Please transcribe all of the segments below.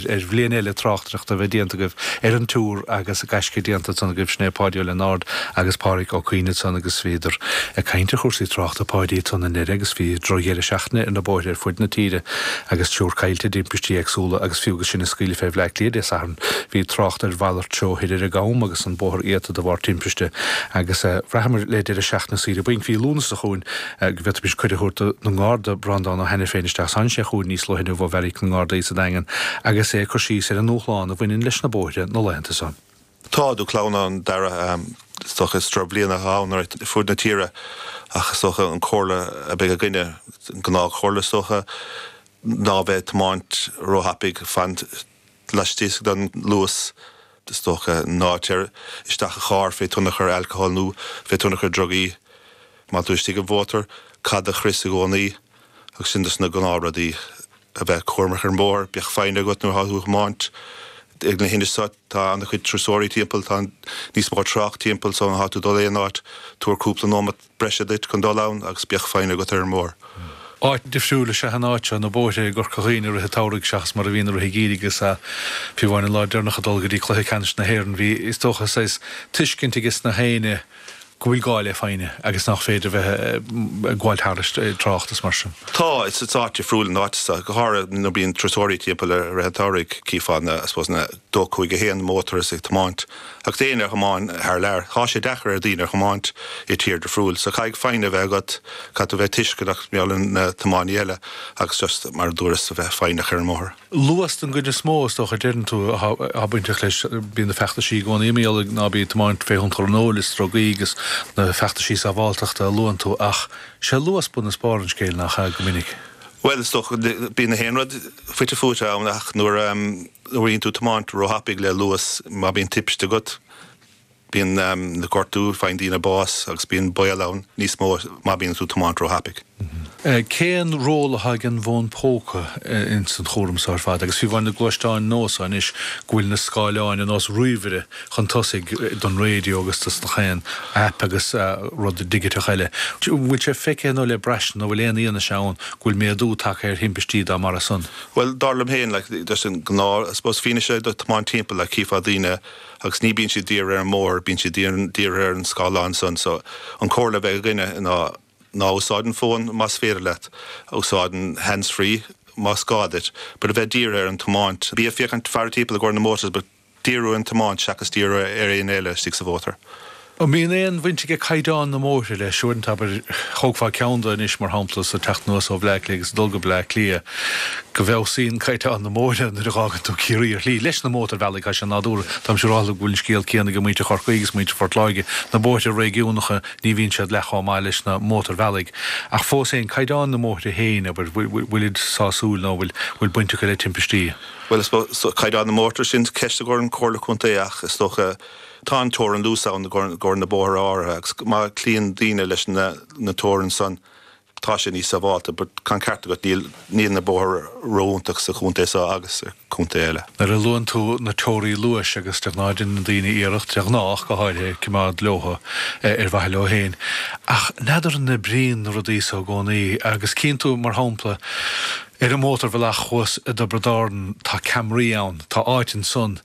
ar bhliain eile tráchtaireachta a bheith déanta acu ar an Tour agus gaisce déanta san acu sin é Páidí Ó Lionáird agus Pádraic Ó Caoineadh san agus bhíodar ag caint ar chúrsaí tráchta Páidí ansan i nDoire agus bhí drochdheireadh seachtaine ann ar na bóithre ar fuid na tíre agus triúr caillte i dtimpistí éagsúla agus fiú agus sinn ag scaoileadh fé Bhleá Cliath Dé Sathairn bhí trácht ar mhalairt treo thoir i gCam agus an bóthar iata de bharr timpiste agus bhraitheamar le deireadh seachtaine saoire bainc mhí Lúnasa chugainn. go bhféadfaimis cuireadh a thabhairt don nGarda, Breandán Ó hAiniféin, isteach sa seó chughainn níos luaithe inniu ó Bheairic na nGardaí sa Daingean agus é ag cur síos ar an ndúshlán a bhaineann leis na bóithre na laethanta seo. Tá dúshlán ann Dara, is dócha is droch bhliain atá ann ar fuaid na tíre ach is dócha an comhairle a beidh againne, an gnáth comhairle is dócha, ná bheith ag tiomáint ró thapaidh, fan laistigh den luas is dócha. Ná téir isteach i charr fé thionchar alcohol nó fé thionchar drugaí. Má tá tú istigh i mhótar, caith do chrios i gcónaí. Agus sin dos na gnáth rudaí. A bheith cúramach ar an mbóthar, bíodh foighne agat nuair atá tú a thiomáint. Ag an am so, tá ana chuid turasóirí timpeall, tá níos mó trácht timpeall so má tá tú dul aon áit, tabhair cúpla nóimeat. breise duit chun dul ann agus bíodh foighne agat ar an mbóthar. Áit difriúil is ea an áit, na bóithre i gCorca Dhuibhne i rith an tsamhraidh seachas mar a bhíonn i rith an gheimhridh agus fiú amháin an lá deireanach ag dul go dtí cluiche ceannais na hÉireann bhí is dócha saghas tuiscint aige gach éinne go bhfuil gá le foighne agus nach féidir bheith ag gabháil thairis trácht is mar sin. Tá, is áit difriúil an áit seo, go háirithe nuair bíonn turasóirí timpeall i rith an tsamhraidh, chífeá na, I suppose, na dó cúig a haon na motors ag tiomáint. Ach éinne a thiomáin thar lear, tá sé deacair ar dhaoine a thiomáint i tír difriúil. So caithfidh foighne a bheith agat, caithfidh tú a bheith tuisceanach mar gheall ar na tiománaithe eile agus just, mar a dúras, a bheith foighneach ar an mbóthar. Luas an ceann is mó, is dócha, a deireann tú, atá bainteach leis. Bíonn na feachtaisí i gcónaí ag maíomh ná bí ag tiomáint fé thionchar an óil is drugaí agus na feachtaisí sábháltachta a luann tú ach sé luas bun is barr an scéil, nach ea, go minic? Bhuel, is dócha, bíonn gach aon rud fite fuaite ann ach nuair a. Bhíonn tú tiomáint ró-thapaidh le luas má bíonn timpiste agat. Bíonn na gortú, faigheann daoine bás agus bíonn baol ann níos mó má bíonn tú tiomáint ró-thapaidh. Cén ról atá ag an bhfón póca in san chúram seo ar fad? Agus fiú amháin na gluaisteáin nua so anois go bhfuil na scáileáin ar nós ríomhaire chun tosaigh don raidio agus dos gach aon aip agus rud digiteach eile. Bhfuil sé feicthe nó le braistint nó bhfuil aon fhianaise ann go bhfuil méadú tagtha ar thimpistí dá mbarra san? Bhuel, dar liom féin, like, an gnáth, I suppose, fianaise do tiomáint timpeall, like, chífeá daoine agus ní bíonn siad dírithe ar an mbóthar, bíonn siad dírithe ar an scáileán san, so an comhairle a bheidh againne ná, ná úsáid an fón más féidir leat, úsáid an hands-free más gá duit, but a bheith dírithe ar an tiomáint, bí ag féachaint ag faire timpeall i gcomhair na motors but. díriú ar an tiomáint seachas díriú ar éinne eile istigh sa mhótar. An mbíonn aon bhaint aige caighdeán na mbóithre leis? Uaireanta, abair, tógfá ceann anois, mar shampla, sa teacht anuas ó Bhleá Cliath agus ag dul go Bleá Cliath, go bhfeabhsaíonn caighdeán na mbóithre nuair a dh'fhágann tú Ciarraí ar shlí, leis na mótarbhealaigh, tá sé nádúrtha. Táimse siúráilte go bhfuil an scéal céanna ag muintir Chorcaí agus muintir Phort Láirge. Na bóithre réigiúnacha, ní bhíonn siad leath chomh maith leis na mótarbhealaigh, ach fós féin, caighdeán na mbóithre féin, abair, bhfuilid sásúil nó bhfuil baint acu le timpistí? Bhuel, is caighdeán na mbóithre sin ceist i gcomhair an Comhairle Contae ach is dócha tá an teorainn luais ann i gcomhair na bóithre áirithe agus má chloíonn daoine leis na teorainn san tá sé níos sábhálta but tá an ceart agat, níl na bóithre ró-iontach sa chontae seo agus i contaetha eile. Nuair a luann tú na teoraí luais agus de ghnáth deineann daoine iarracht, de ghnáth go háirithe, cimeád leobhtha ar mhaithe leo féin ach n'fheadar an n-oibríonn na rudaí so i gcónaí agus cíonn tú mar shampla, Ar an mhótarbhealach thuas i dTiobraid Árann tá ceamaraí ann, tá áit ansan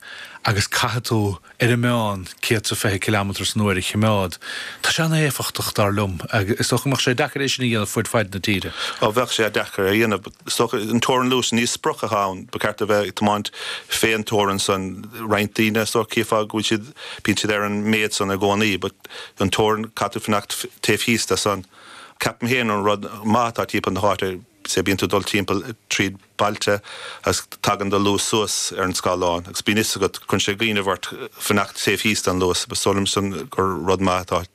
agus caithfidh tú ar an meán céad is fiche cileameter san uair a chimeád. Tá sé an-éifeachtach dar liom agus is dócha go mbeadh sé deacair é sin a dhéanamh fuaid faid na tíre. Ó bheadh sé deacair a dhéanamh. Is dócha an teorainn luais ní sprioc atá ann. Ba ceart a bheith ag tiomáint fén teorainn san. Roinnt daoine is dócha cífeá go bhfuil siad, bíonn siad ar an méad san i gcónaí but an teorainn caithfidh tú fanacht taobh thíos de san. Ceapaim fhéin an rud maith atá timpeall na h-áite, Sea, bíonn tú ag dul timpeall tríd bailte agus tagann do luas suas ar an scáileán agus bíonn fhios agat, cuireann sé cuimhneamh ort fanacht taobh thíos den luas. Is dóigh liom san gur rud maith atá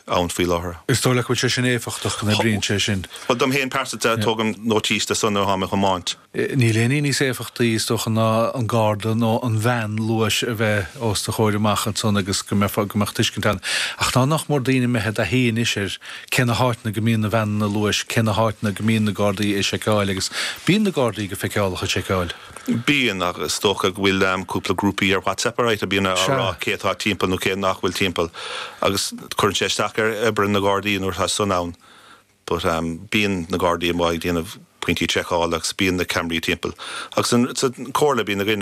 ann faoi láthair. Is dóigh leat go bhfuil sé sin éifeachtach, go n-oibríonn sé sin? Bhuel, dom fhéin pearsanta, tógaim nótís de san nuair atá mé ag tiomáint. Níl aon ní níos éifeachtaí, is dócha, ná an garda nó an veain luais a bheith os do chomhair amach ansan agus go mbeadh tuiscint ann. Ach nach mór do dhaoine a bheith i dtaithí anois ar. Cé na háiteanna go mbíonn na veaineanna luais? Cé na háiteanna go mbíonn na Gardaí ag seiceáil? Agus bíonn na Gardaí go feiceálach ag seiceáil? Bíonn, ach is dócha go bhfuil cúpla grúpaí ar WhatsApp anois a bhíonn á rá cé atá timpeall nó cé nach bhfuil timpeall. Agus cuireann sé isteach ar obair na Gardaí nuair atá san ann. But bíonn na Gardaí amuigh ag déanamh pointí seiceála agus bíonn na ceamaraí timpeall. Agus sa Chomhairle bíonn na Gardaí.